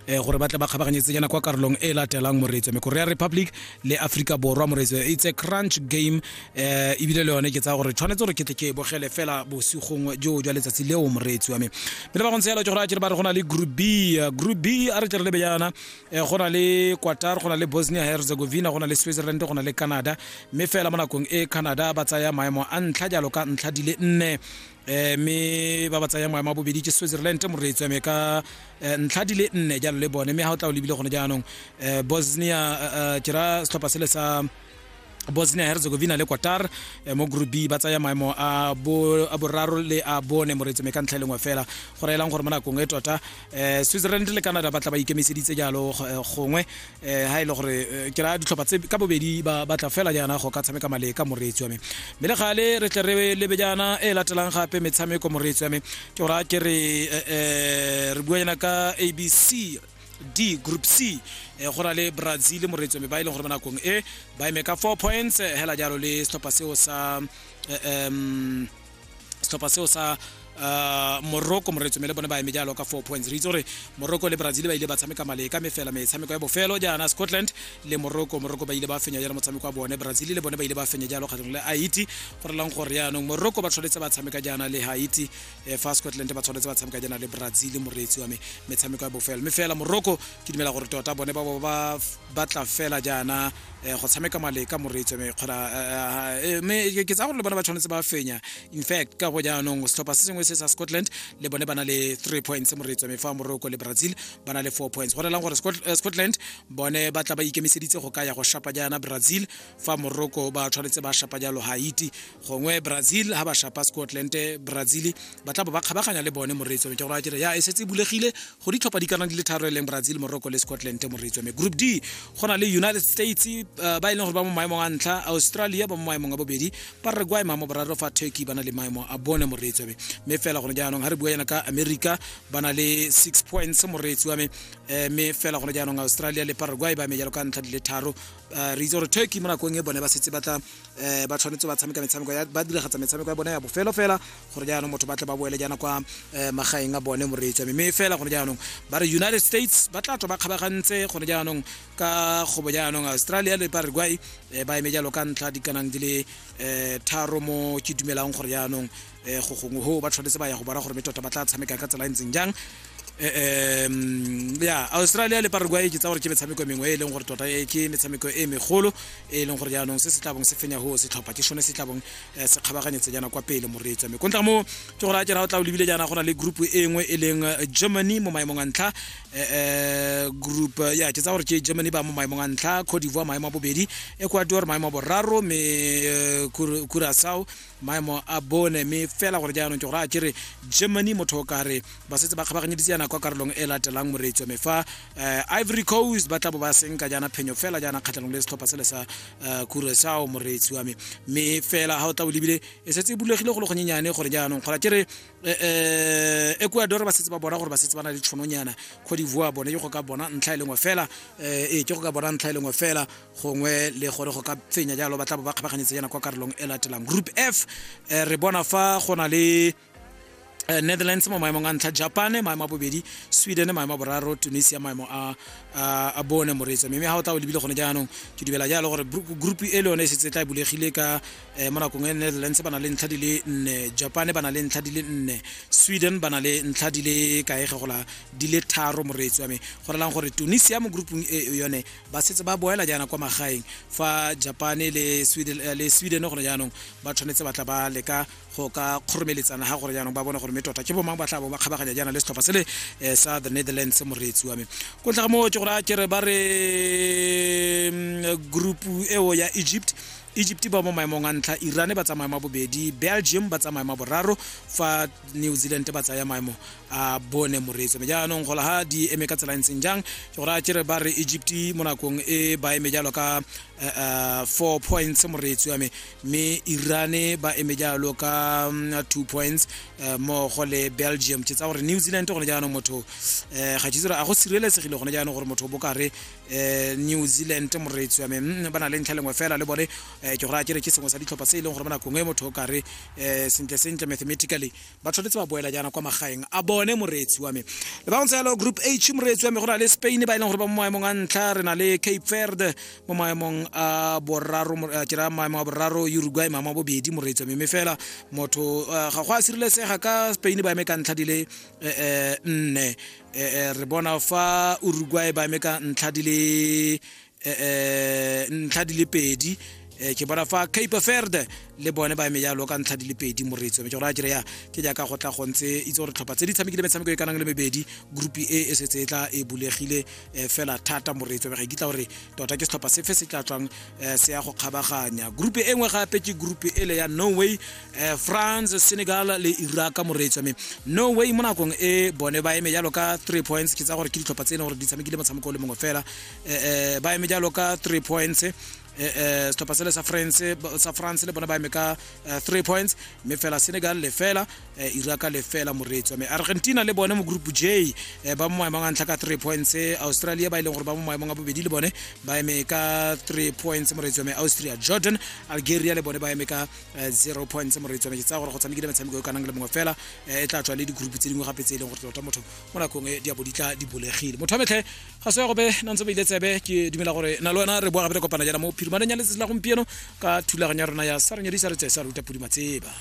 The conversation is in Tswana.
eh, gore ba tle ba kgabaganyetsejana kwa karolong e latelang moreetso me korea republic le africa borwa moreetso it's a crunch game um ebile le yone ke tsaya gore tshwanetse gore ke tle ke bogele fela bosigong jo jwa letsatsi leo moreetsi wa me pele ba go ntse yalo ke gore a kere ba re go na le group b eh, group b a re tle re lebe yana um go na le quatar go na le bosnia herzegovina go na le switzerland go na le canada mme fela mo nakong e canada ba tsaya maemo a ntlha jalo ka ntlha di le nne eh mme ba ba tsaya moya mabobedi ke switzerland mo re tsweme ka eh, ntlha di le nne jalo le bone mme ga o tla o lebile gone jaanong eh, bosnia eh, eh, ke ra setlhopha sele sa bosnia herzegovina le qatar eh, mo group b ba tsaya maemo a bo- a boraro le a bone moreetsome ka ntlha e lengwe fela go raelang gore mo nakong e tota eh Switzerland le Canada ba tla ba ikemiseditse jalo eh, gongwe eh ha ile e gore eh, ke ra ditlhopha tse ka bobedi ba batla fela jana go ka tshameka male ka moreetsi wa me mme le gale re tle re lebe jana e latelang gape metshameko moreetsi wa me ke go raya ke re eh, re bua jana ka abc d group c eh, go na le brazil moreetsi wa me ba e leng gore mo nakong e ba eme ka four points eh, hela jalo le setlhopha seo sa eh, um setlhopha seo sa uh, morocco moretsome le bone ba eme jalo ka four points re itse gore morocco le brazil ba ile ba tshameka male ka mefela metshameko ya bofelo jaana scotland le morocco morocco ba ile ba fenya jalo motshameko wa bone brazil le bone ba ile ba fenya jalo kgatlhong le haiti go relang gore yaanong morocco ba tshwanetse ba tshameka jaana le haiti eh, fa scotland ba tshwanetse ba tshameka jaana le brazil moreetsi wa me metshameko ya bofelo mme fela morocco ke dumela gore tota bone ba bo ba batla fela jaana um go tshameka maleka moreetso me kgona mme ke tsaya gore le bone ba tshwanetse ba fenya in fact ka go jaanong setlhopha se sengwe se sa scotland le bone ba na le three points moreetso me fa morocco le brazil ba na le four points go relang gore scotland bone ba tla ba ikemiseditse go ka ya go shapa jaana brazil fa morocco ba tshwanetse ba shapa jalo haiti gongwe brazil ha ba shapa scotland brazil ba tla bo ba kgabaganya le bone moreetso ke gore a kere ya e setse e bulegile go ditlhopha di kana di le tharo e leng brazil morocco le scotland moreetso me group d go na le united states uh, ba e leng gore ba mo maemong a ntlha australia ba mo maemong a bobedi paraguay maemo boraro fa turkey ba na le maemo a bone moreetso me me fela gone jaanong ha re bua yana ka america ba na le six points moreetsi wa me eh, me fela gone jaanong australia le paraguay ba me jalo ka ntlha di le tharo uh, re itse gore turkey mo nakong e bone ba setse ba tla eh ba tshwanetse ba tshameka metshameko ya ba diragatsa metshameko ya bone ya bofelo fela gore jaanong motho ba tle ba boele jaana kwa eh, magaeng a bone moreetsi mme fela gone jaanong ba re united states ba tla tswa ba kgabagantse gone jaanong ka kgobo jaanong australia le paraguay eh, ba eme jalo ka ntlha dikanang di le eh, tharo mo ke dumelang gore jaanong um go gongwe go ba tshwanetse ba ya go bona gore me tota ba tla tshameka ka tsela e ntseng jang um ya australia le paraguay ke tsa gore ke metshameko e mengwe e leng gore tota ke metshameko e megolo e leng gore jaanong se se tlabong se fenya go setlhopha ke sone se tlabong se kgabaganyetse jaana kwa pele moreetswa me kontla mo ke gore a jana o tla o lebile jaana go na le group e nngwe e leng germany mo maemong a ntlha um group ya ke tsa gore ke germany ba mo maemong a ntlha cote divoire maemo a bobedi ecuador maemo a boraro me curasao maemo a bone mme fela gore jaanong ke gore a kere germany motho o kare ba setse ba kgabaganyeditse yana kwa karolong e latelang moreetswa me fa eh, ivory coast ba tla bo ba senka jaana phenyo fela jaana kgatlhanong le setlhopha sele sa eh, kurasao moreetsi wa me mme fela ga o tla o lebile e setse e bulegile go le gonyenyane gore jaanong kgora kere eh, eh, ecuador ba setse ba bona gore ba setse ba na le tshononyana cote divoire bone ke go ka bona ntlha e lengwe fela eh, ee ke go ka bona ntlha e lengwe fela gongwe le gore go ka fenya jalo ba tla bo ba kgabaganyetse yana kwa karolong e latelang group f eh, re bona fa go na le eh, netherlands mo maemong a ntlha japan maemo a bobedi sweden maemo a boraro tunisia maemo a, a, a bone moreetso mme ga o tla o lebile gone jaanong ke dumela jalo gore bru- group e le yone e setse e tla e bulegile ka eh, mo nakong e netherlands ba na le ntlha di le nne japan ba na le ntlha di le nne sweden ba na le ntlha di le kaege gola di le tharo moreetso wa me go relang gore tunisia mo groupung e e yone ba setse ba boela jaana kwa magaeng fa japane le sweden, eh, le sweden gone jaanong ba tshwanetse ba tla ba leka go ka kgoromeletsana ga gore jaanong ba bone gore mme tota ke bomang ba tla bo ba kgabaganya jaana le setlhopha se le eh, sa the netherlands moreetsi wa me ko ntlha ga moo ke gore a kere ba re mm, group eo ya egypt egypt ba mo maemong a ntlha iran ba tsamaya ma bobedi belgium ba tsamaya ma boraro fa new zealand ba tsaya maemo a bone moreetso me jaanong gola ga di eme ka tsela e ntseng jang ke gore a kere ba re egypt mo nakong e ba eme jalo ka eh, eh, four points moreetso ya me mme irane ba eme jalo ka mm, two points eh, mmogo le belgium ke tsa gore new zealand gone jaanong motho eh, ga ke tsere a go sireletsegile gone jaanong gore motho o bokare eh, new zealand moreetso ya me mm, ba na le ntlha lengwe fela le bone eh, ke gore a kere ke sengwe sa ditlhopha se e leng gore mo nakong e motho o kare eh sentle sentle mathematically ba tshwanetse ba boela jaana kwa magaeng a bone moreetsi wa me le ba go ntse group h moreetsi wa me go na le spain ba e leng gore ba mo maemong a ntlha re na le cape verde mo maemong a boraro ke ra maemo a boraro uruguay maemo a bobedi moreetsi wa me mme fela motho eh, ga go a sireletsega ka spain ba eme ka ntlha di le eh, eh, nne eh, eh, re bona fa uruguay ba eme ka ntlha di le eh, eh, ntlha di le pedi eh, ke bona fa cape verde le bone ba eme jalo ka ntlha di le pedi moretso mme ke gore a kereya ke jaaka go tla go ntse itse gore tlhopha tse di tshamekile metshameko e kanang le mebedi group e e setse e tla e bulegile eh, fela thata moretso mme ga e kitla gore tota ke setlhopha sefe se tla tswang eh, se ya go kgabaganya group e nngwe gape ke group e le ya norway eh, france senegal le iraq moretso mme norway mo nakong e bone ba eme jalo ka three points ke tsa gore ke ditlhopha tse e leng gore di tshamekile motshameko o le mongwe fela eh, ba eme jalo ka three points eh, eh, setlhopha sele sa france sa france le bona ba eme ka eh, three points mme fela senegal lefela eh, iraka lefela moreetsi wa me argentina le bone mo group j eh, ba mo maemong a ntlha ka three points eh, australia ba e leng gore ba mo maemong a bobedi le bone ba eme ka three points moreetsi wa me austria jordan algeria le bone ba eme ka eh, zero points moreetsi wa me ke tsaya gore go tshamekile metshameko e kanang le mongwe fela eh, e tla tswa le digroup tse dingwe gape tse e leng gore tota motho mo nakong e di a bo di tla di bulegile motho wa metlhe ga se ya gobe na ntse ba ile tsebe ke dumela gore na le wena re boa gape re kopana jana mo phirumaneng ya letsatsi la gompieno ka thulaganyo ya rona ya sa re nyedisa re tse sa ruta pudi matseba